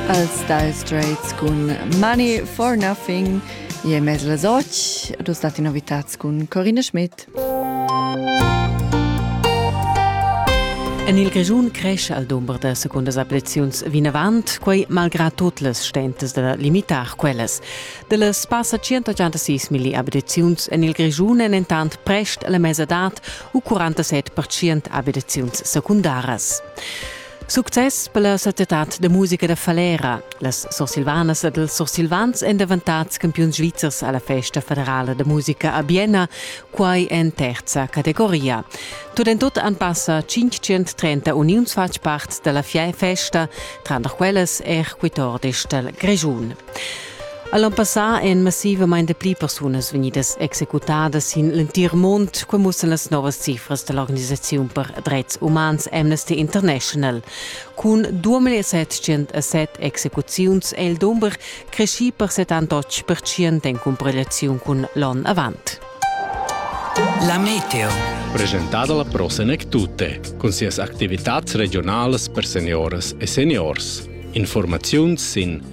Els Dire Straits cun Money for Nothing e mez las 8 dus stati novitats cun Corinne Schmidt. En il Grischun cresce al dumber da secundas ablaziuns vinavant, quei malgrad tot las stentas da limitar quellas. Dellas passa 186 milli ablaziuns en il Grischun en entant prest alla mesadad u 47% ablaziuns secundaras. Success per la societad da musica da Falera. Las sursilvanas ed els sursilvans èn davantads campiuns svizzers a la festa federala da musica a Bienna, quai en terza categoria. Tut en tut han passa 530 uniuns fatg part da la festa, tranter quellas er quitordis dal Grischun. All'an passà èn massivamain pli persunas vegnidas executadas sin l'entir mund, qua mussan las novas cifras da l'organisaziun per dretgs umans Amnesty International. Cun 2707 execuziuns è il dumber creschì per 78% en cumparegliaziun cun l'onn avant. La Meteo. Presentada la prossima tutte, con sias attività regionales per seniores e seniors. Informazioni sin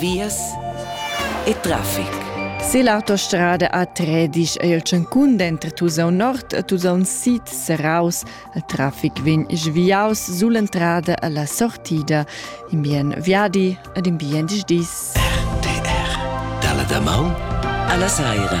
vias e traffic. Se l'autostrada A3 disch ei el tschancun denter Tusau Nord e Tusau Sid seraus, il traffic vegn sviaus sull'entrada alla sortida, in bien viadi ed in bien dis. RTR. Dalla damaun alla saira.